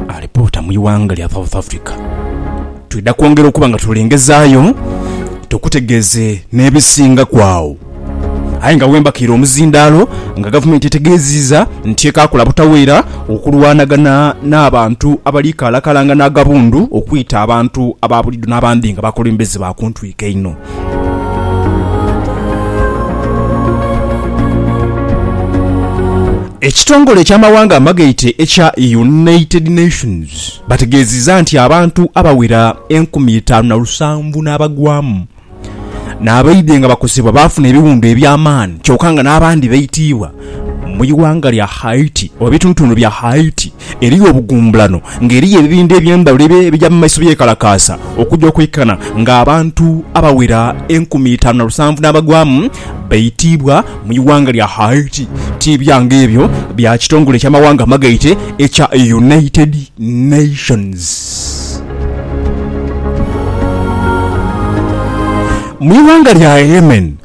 Alipoota mu ighanga lya South Africa. Twidha kwongera okuba nga tulengezaayo tukutegeeze n'ebisingaku agho. Aye nga wembakiire omuzindaalo nga gavumenti etegeeziiza nti ekaakola butaweera okulwanagana n'abantu abali kaalakalangana agabundu okwita abantu aba buliidho n'abandi nga bakulembeze ba ku ntwiko einho. Ekitongole eky'amawanga amagaite ekya United Nations bategeziza nti abantu abawera enkumi itaanu na lusanvu n'abagwamu n'abaidhe nga bakosebwa baafuna ebiwundu eby'amaani kyoka nga n'abandi baitiibwa mu ighanga lya Haiti oba ebitundutundu bya Haiti. Eriyo obugumbulano nga eriyo ebibindha eby'endhawulo ebija mu maiso byekalakaasa okuja okwikana nga abantu abawera enkumi itaanu na lusanvu n'abagwamu baitiibwa mu ighanga lya Haiti. Tiibya nga ebyo bya kitongole eky'amawanga amagaite ekya United Nations. Mu ighanga lya Yemen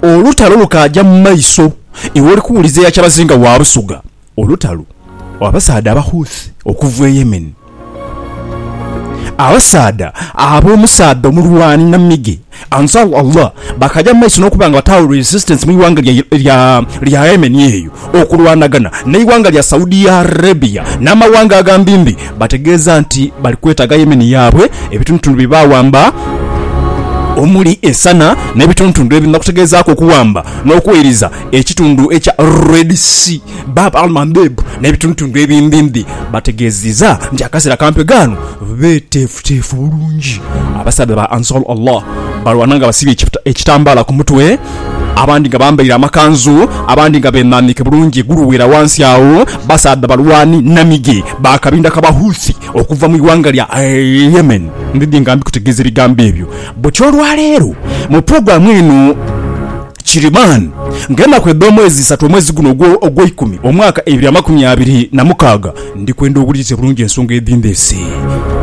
olutalo lukaaja mu maiso iwe oli kuwuliza eya kyabazinga wa Busoga Olutalo abasaadha Abahouthi okuva e Yemen. Abasaadha abo omusaadha omulwani namige Ansar Allah bakaja mu maiso nokuba nga bataawo resistance mu ighanga lya Yemen eyo okulwanagana ne ighanga lya Saudi Arabia namawanga agambi mbi bategeeza nti bali kwetaaga Yemen yabwe ebitundutundu bye bawamba omuli e Sana nebitundutundu ebirala okutegezaaku okuwamba nokuwairiza ekitundu ekya Red Sea, Bab al-Mandeb n'ebitundutundu ebimbimbi bategeezezza nti akaseera kampi ghano beeteefuteefu bulungi. Abasaadha ba Ansar Allah balwana nga basibye ekitambaala ku mutwe, abandi nga bambaire amakanzu, abandi nga beenhaaniike bulungi eguluweera wansi agho. Basaadha balwani na mige ba kabinda ka Bahouthi okuva mu ighanga lya Yemen. Ndidhi nga mbikutegeeza ebigambo ebyo butya olwaleero mu pulogulaamu eno. Kiriman, nga enaku edh'omwezi isatu omwezi guno ogwo ogweikumi omwaka ebiri amakumi abiri na mukaaga, ndikwenda owulirize bulungi ensonga edhindheese.